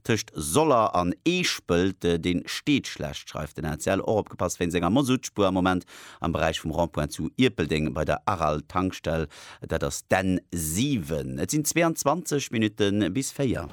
Tëscht Soller an Eeschpelt, dee steet schlecht, schreift den ACL. Och opgepasst wéinst enger Mozoutspur am Moment am Beräich vum Rond-point zu Ierpeldeng bei der Aral-Tankstell, dat ass d'N 7. Et sinn 22 Minutte bis 4.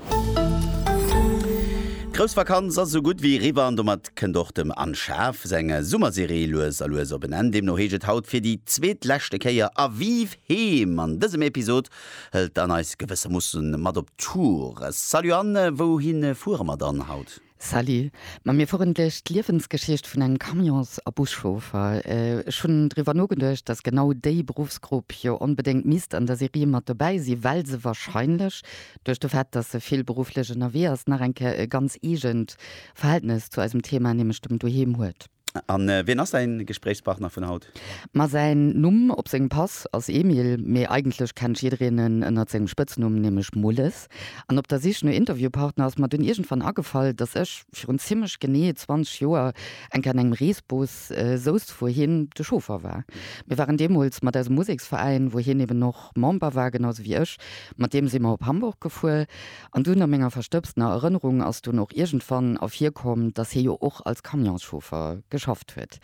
D'grouss Vakanz ass esou gutt wéi eriwwer an domat kënnt och dem Anne Schaaf seng Summerserie lues a lues op en Enn. Deemno heescht et haut fir déi zweetleschte Kéier A Vive Heem! An dësem Episod Hëlt dann eis gewëssermussen mat op Tour. Salut An wouhin fuere mer dann haut? Salut, ma mir fueren duerch d'Liewensgeschicht vun engem Camions a Buschauffer. Ech hunn driwwer nogeduecht, dass genau déi Beruffsgrupp jo onbedéngt misst an der Serie mat dobäi sinn, well se wahrscheinlech duerch de Fait, dass se vill berufflech ënnerwee ass, nach eng Kéier e ganz eegent Verhältnes zu eisem Thema, nämlech dem Doheem huet. An wien ass däin Gespréichspartner vun haut? Ma säin Numm op sengem Pass ass Emil, mee eigentlech kennt jiddereen en ënnert sengem Spëtznumm, nämlech Mulles. An op der Sich no Interviewpartner ass mer dunn iergendwann agefall, dass ech virun zimmlech genee 20 Joer eng Kéier an engem Reesbus, sousst wou hien de Chauffer war. Mir waren deemools mat eisem Museksveräin, wou hien eben och. och Member war, genausou wéi ech, mat deem si mer op Hamburg gefuer. An dunn, a menger verstëbstener Erënnerung, ass dunn och iergendwann ervirkomm, datt hie jo och als Camionschauffer geschafft huet.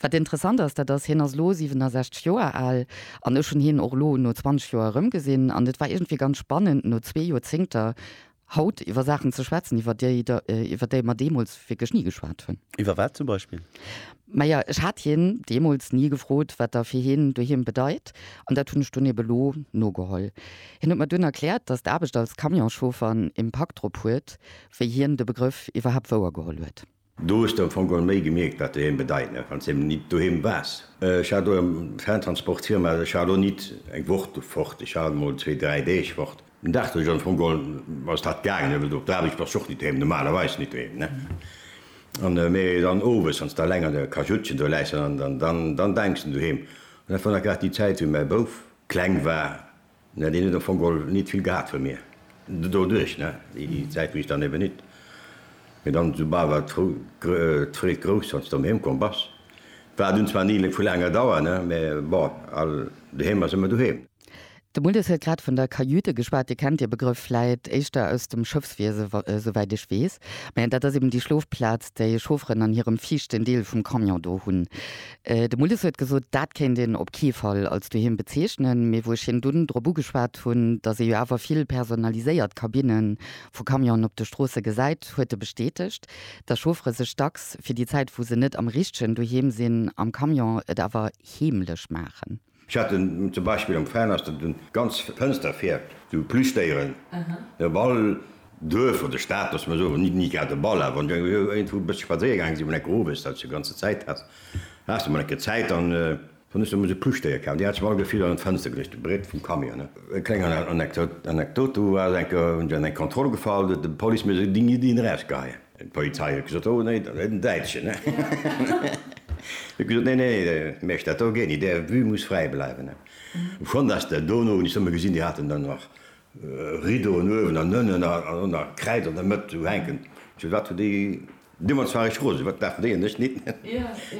Wat interessant ass, dat ass, hien ass elo 67 Joer al, an ech hunn hien och elo no 20 Joer erëmgesinn, an et war iergendwéi ganz spannend, no zwee Joerzéngter, Haut iwwer Saachen ze schwätzen, iwwer déi der, iwwer déi mer deemools wierklech ni geschwat hunn. Iwwer wat zum Beispill? Maja, ech hat hien deemools ni gefrot, wat der fir hien doheem bedeit, an dat hunn ech dunn ebe lo nogeholl. Hien huet mer dunn erkläert, datt d'Aarbecht als Camionschauffer en Impakt drop huet, wéi hien de Begrëff iwwerhaapt wouer geholl huet. Do hues de am Fong geholl méi gemierkt wat doheem bedeit, ne, wanns de eben nit doheem wars. Ech hat elo eng Fantransportfirma, also ech war elo nit eng Woch fort, ech war mol zwee, dräi Deeg fort. Den Dag deen ech am Fong geholl ass dat gaangen, ne, well do op der Aarbecht bass de och nit doheem, normalerweis nit doheem, ne, an mee dann owes wanns de alleng an der Kajuttchen do läis, dann dann dann denks de un doheem. An dat war nach grad déi Zäit wéi mäi Bouf kleng war, Ne, deen huet am Fong gol nit vill gehat vun mir doduerch, ne, déi Zäit wou ech dann eben nit méi dann esoubal war d'Freed grouss wanns de doheem komm bass. War dunn zwar ni vu laanger Dauer, ne, mä bon, all doheem ass ëmmer doheem. De Muldes huet grad vun der Kajüte geschwat. Dir kennt de Begrëff vläit éischter aus dem Schëffswiese, souwäit ech weess, mä dat ass eben déi Schlofplaz, déi Chaufferen an hirem viischten Deel vum Camion do hunn. De Mullis huet gesot, dat kéint een op kee Fall als Doheem bezeechnen, mee wou ech hien dunn drop ugeschwat hunn, datt ee jo awer vill personaliséiert Kabinne vu Camionen op de Stroosse gesäit, huet e bestätegt, datt Chauffere sech dacks fir déi Zäit, wou se net am richtegen Doheem sinn am Camion, et awer heemlech maachen. Ech hat den zum Beispill am Fernhaus, dat den ganz Fënster fäerbt, sou Plüschdéieren, e Ball, Duerf oder Stad, loosse mer soen, nit nit grad e Ball, awer wann du iergendwou e bësse spadséier gaangen si, mol enke owes, dat s du ganze Zäit has, has du mol enke Zäit an hunn ech deemools e Plüschdéier kaf, déi hat ech mer all gefill an d'Fënster geluecht, de Brett vum Camion, ne. Eng kleng Anekdot, Anekdot, do war ech enke, hunn ech an eng Kontroll gefall, huet de Policemees e Ding-i-Ding erausgeheien. D'Polizei huet gesot, oh nee, den Däitschen. Hie huet gesot, nee, nee, Mesch, dat do geet nit, där Vue muss fräi bleiwen. Schon datt der do no, hunn ech somme gesinn, déi haten dann nach Rideauen uewen an ënnen a lo nach Kräid an der Mëtt do hänken. Zu wat hu déi, du mer zwar reg rose, wat dafen déi an ech nit.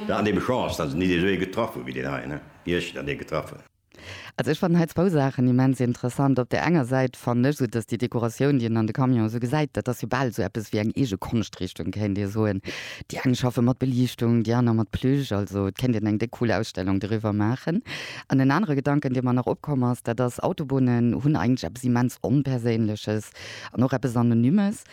An ebe Chance, datt se nit esou ee getraff hu wéi deen hei, wéi ech dann dee getraff hunn. Also ech fannen hei zwou Saachen immens interessant. Op där enger Säit fannen ech esou, datt déi Dekoratioun, déi een an de Camion esou gesäit, dat ass jo bal esou eppes wéi eng eege Konschtrichtung, kéint ee soen. Déi eng schaffe mat Beliichtung, déi aner mat Plüsch. Also et kéint een eng déck cool Ausstellung doriwwer maachen. An en anere Gedanken, dee mer nach opkomm ass, dat ass, Autobunnen hunn eigentlech eppes immens Onperséinleches an och eppes Anonymes.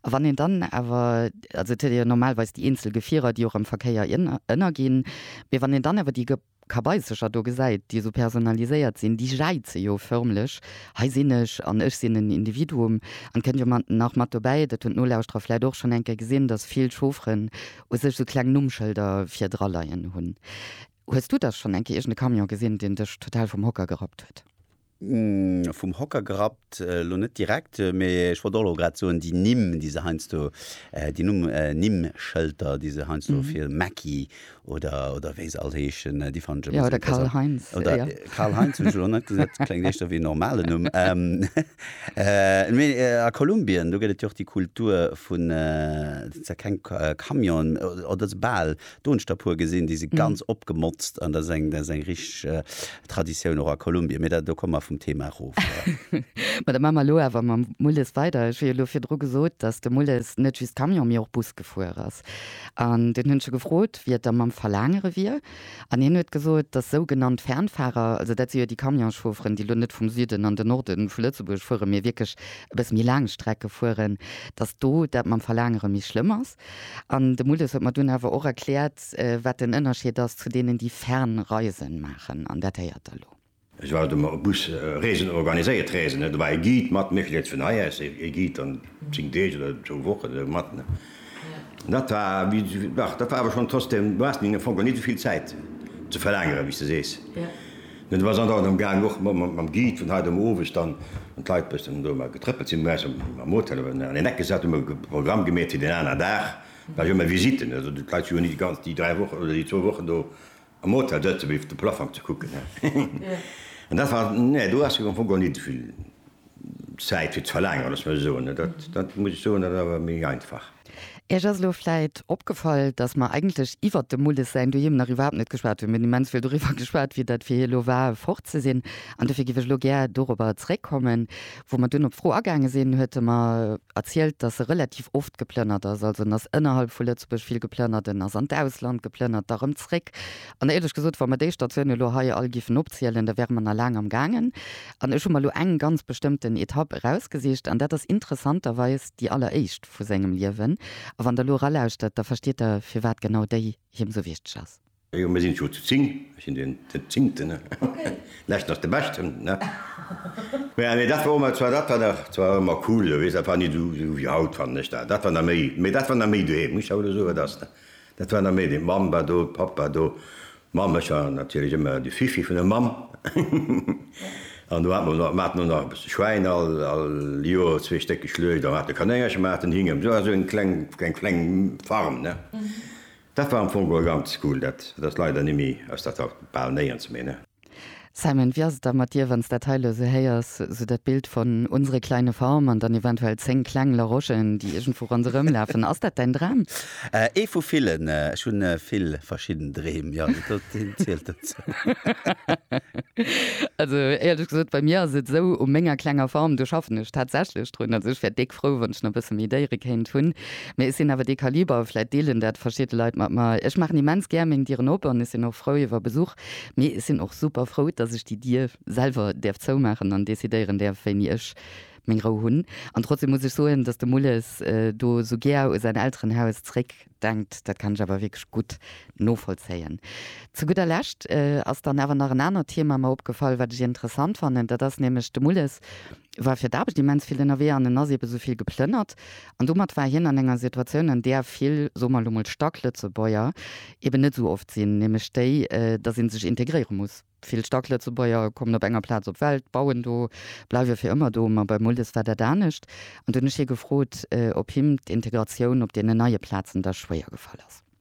A wann een dann awer, also et huet ee jo normalweis déi eenzel Gefierer, déi och am Verkéier ënnerginn, mee wann een dann awer déi Kabaissercher do gesäit, déi esou personaliséiert sinn, déi jäize jo förmlech, Hei sinn ech an ech sinn en Individuum. An et kënnt jo nach mat dobäi, dat hunn d'Nolauschterer vläicht och schonn eng Kéier gesinn, datt vill Chaufferen u sech esou kleng Nummschëlder virdra leien hunn. Hues du da schonn eng Kéier iergend e Camion gesinn, deen dech total vum Hocker gerappt huet? Vum Hocker gerappt, elo net direkt, mee ech wollt och elo grad soen, déi Nimm, déi se heiansdo, déi Numm, Nimmschëlter, déi se heiansdo fir Mäcki oder, oder wéi se all heeschen, déi fannen ech ëmmer esou interessant. Jo, oder Karl-Heinz. Oder Karl-Heinz hunn ech elo net gesot, kléngt éischter wéi en normalen Numm. Mee a Kolumbien, do gëtt et jo och déi Kultur vun, dat sinn zwar keng Camionen, oder bal, Doenschder puer gesinn, déi si ganz opgemotzt an dat ass eng, dat ass eng richteg Traditioun och a Kolumbien. Mee dat, do komme mer vum Thema erof. Ma da maache mer elo awer mam Mulles weider. Ech hu jo elo virdru gesot, datt de Mulles net just Camion, mee och Bus gefuer ass. An dunn hunn ech e gefrot, wéi et da mam Verlaangere wier. An hien huet gesot, datt sougenannt Fernfahrer, also dat si jo déi Camionschaufferen, déi elo net vum Süden an den Norde vu Lëtzebuerg fueren, mee wierklech e bësse méi laang Strecke fueren, datt do dat mam Verlaangere méi schlëmm ass. An de Muldes huet mer dunn awer och erkläert, wat den Ënnerscheed ass zu deenen, déi Fernreisen maachen. An dat héiert Der elo. Ech war de Bus Reesen organiséiert, Reesen, do war e Guide mat, mir krute vun hei aus e Guide an zéng Deeg oder zwou Wochen esou mat. An dat war, dach, dat war awer schonn trotzdem, du has am Fong geholl net esou vill Zäit ze verlaangeren, wéi s de sees. Mir sinn dann am gaang och mam Guide vun hei dem Owend dann an d'Leit bëssen do mol getrëppelt sinn bei eis am Hotel an een Eck gesat, hu mer Programm gemeet fir den aneren Dag, da hu mer Visiten, also d'Leit si jo net déi 3 Wochen oder déi zwou Wochen do am Hotel sëtzen fir de Plaffong ze kucken, an dat war, nee do ass am Fong geholl net vill. Zäit fir ze verlaangeren, dass mer soen, dat muss ech soen, dat ass awer méi einfach. Iech ass elo vläit opgefall, dass mer eigentlech iwwert dem Mulles säin Doheem nach iwwerhaapt net geschwat hunn. Mir hunn immens vill doriwwer geschwat, wéi dat fir hie lo war, fort ze sinn. An dofir géif ech elo gär dorobber zréckkommen. Wou mer dunn op d'Fro agaange sinn, huet e mer erzielt, dass e relativ oft geplënnert ass. Also en ass ënnerhalb vu Lëtzebuerg vill geplënnert, en ass an d'Ausland geplënnert, da rëm zréck. An éierlech gesot, wa mer déi Statiounen elo hei all géifen opzielen, da wäre mer nach laang am gaangen. An ech hu mer lo eng ganz bestëmmten Etapp erausgesicht, an dat ass interessanterweis déi alleréischt vu sengem Liewen. A wann Der elo eralauschtert, da verstiet Der, firwat genau déi him esou wichteg ass. Jo, mir sinn jo zu zing. Ech sinn den Zingten. Leschten ass de Beschten, ne? Mä dat war och, zwar dat war nach, dat war ëmmer cool, jo, weess, dat war ni esou wéi haut, fannen ech dat. Dat war nach méi, mä dat war nach méi doheem, muss ech der elo soen, wat ass, ne? Dat war nach méi de Mamm war do, Papp war do, Mamm, ech war natierlech ëmmer de Fifi vun der Mamm. An do hat mer nach, mer haten och nach e bësse Schwäin, all, all Joer zwee Stéck geschluecht, a mer hate Kanéngercher, mer haten Hinge, jo, also eng kleng, eng kleng Farm, ne. Dat war am Fong geholl ganz cool. Dat ass leider ni méi, ass dat haut bal néierens méi, ne. Simon, wéi ass et da mat dir, wann s dat hei elo esou héiers, esou dat Bild von unsere kleine Farm an dann eventuell 10 kleng Larochen, déi iergendwou ronderëm lafen. Ass dat däin Dram? Ee vu villen. Ech hu vill verschidden Dreem, jo. Deen zielt dozou. Also, éierlech gesot, bei mir ass et esou, u menger klenger Farm, do schaffen ech tatsächlech drun. Also ech wär déck frou, wann ech nach e bësse méi Déiere kéint hunn. Mee ech sinn awer dee Kaliber, vläicht deelen dat verschidde Leit mat mer, ech maachen immens gär meng Dieren op an ech sinn och frou iwwer Besuch, Mee ech sinn och super frou, dass ech déi Dier selwer däerf zoumaachen an decidéieren däerf, wéini ech meng Rou hunn. An trotzdeem muss ech soen, dass de Mulles do sou gär u säin Elterenhaus zréck denkt, dat kann ech awer wierklech gutt novollzéien. Zu gudder Lescht ass dann awer nach en anert Thema mer opgefall, wat ech interessant fannen. Dat ass nämlech, de Mulles war fir d'Aarbecht immens vill ënnerwee an en ass eebe sou vill geplënnert An domat war hien an enger Situatioun, an där vill, soe mer elo mol, stark Lëtzebuerger eben net esou oft sinn, nämlech déi, datt ee sech integréiere muss. Vill stark Lëtzebuerger kommen op enger Plaz op d'Welt, bauen do, bleiwe fir ëmmer do. Ma beim Muldes war dat anescht. An do hunn ech hie gefrot, ob him d'Integratioun op deenen neie Plazen da schwéier gefall ass.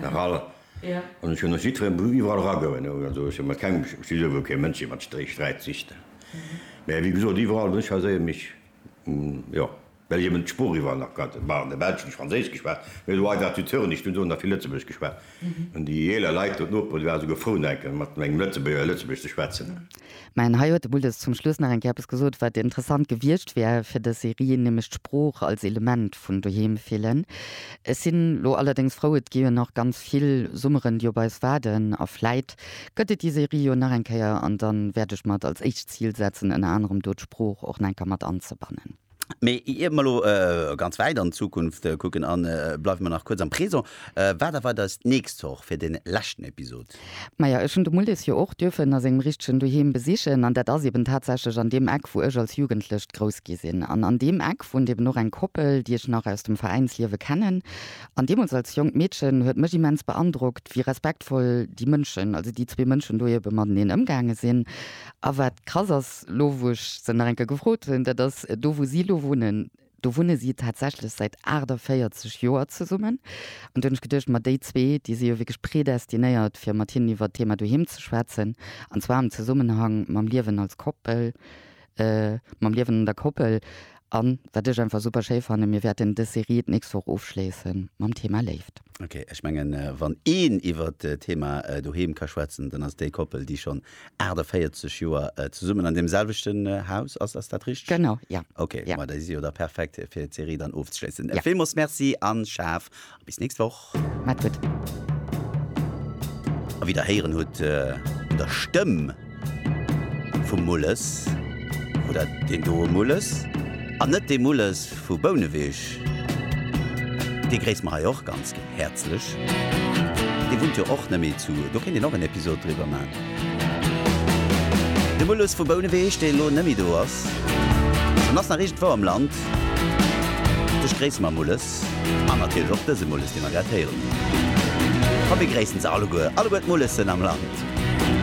Nach all, an ech hunn och jiddweree Bru iwwerall eragoen, also ech hunn mat kengem, ech si souwuel kee Mënsch dee mat Stréi Sträit sicht, mä wéi gesot, iwwerall wou ech war, séie mech, jo, well ech eben d'Sprooch iwwerall nach kannt, bon, an der Belsch hunn ech Franséisch geschwat, mä esou hei war zu Thurn, ech hunn do nach vill Lëtzebuergesch geschwat, an déi eeler Leit do, d'Noperen, déi waren esou gefrou, enke mat engem Lëtzebuerger Lëtzebuergesch ze schwätzen. Mä hei huet de Buldes zum Schluss nach eng Kéier eppes gesot, wat interessant gewiescht wär fir dës Serie, nämlech d'Sprooch als Element vun doheem fillen. Ech sinn elo allerdéngs frou, et gi jo nach ganz vill Summeren, déi op eis waarden, a vläit gëtt et déi Serie jo nach eng Kéier, an da wäert ech mer et als éischt Zil setzen, ënner anerem do d'Sprooch och nach eng Kéier mat anzebannen. Mee ier mer elo ganz wäit an d'Zukunft kucken a bleiwe mer nach kuerz am Présent, wat erwart eis d'nächst Woch fir dee leschten Episod? Maja, ech hunn de Mullis jo och duerfen a sengem richtegen Doheem besichen an dat ass eben tatsächlech an deem Eck wou ech als Jugendlecht grouss gi sinn. An an deem Eck wunnt eben och eng Koppel, déi ech nach aus dem Veräinsliewe kennen. An deemools als jonkt Meedchen huet mech immens beandrockt, wéi respektvoll déi Mënschen, also déi zwee Mënschen do ebe mateneen ëmgaange sinn. A wat krass ass, lo wou ech se nach eng Kéier gefrot hunn, dat ass do wou si elo wunnen, do wunne si tatsächlech säit 48 Joer zesummen. An do hunn ech geduecht, ma déi zwee, déi si jo wierklech predestinéiert fir mat hinnen iwwert d'Thema doheem ze schwätzen, an zwar am Zesummenhang mam Liewen als Koppel, mam Liewen an der Koppel. An wat ech einfach super schéi fannen, mir wäerten dës Serie d'nächst Woch ofschléisse mam Thema Léift. Ok, ech mengen, wann een iwwert d'Thema doheem ka schwätzen, dann ass déi Koppel, déi schonn 48 Joer zesummen an deem selwechten Haus ass. Ass dat richteg? Genau, ja. Ok, ma déi si jo da perfekt, fir d'Serie dann ofzeschléissen. Villmools Merci an schaaf Bis nächst Woch. Maat gudd. A wéi der héieren hutt un der Stëmm vum Mulles, wor dat deen doe Mulles an net dee Mulles vu Bouneweg. Dee gréiss mer hei och ganz häerzlech. Dee wunnt jo och net méi zu, do kéint een och en Episod driwwer maan. De Mulles vu Bouneweg, dee elo net méi do ass. En ass nach iergendwou am Land. Dech gréisse mer Mulles. An natierlech och dëse Mulles, dee mer grad héieren hunn. Komm, mir gréissen se alleguer, alleguer d'Mullesen am Land!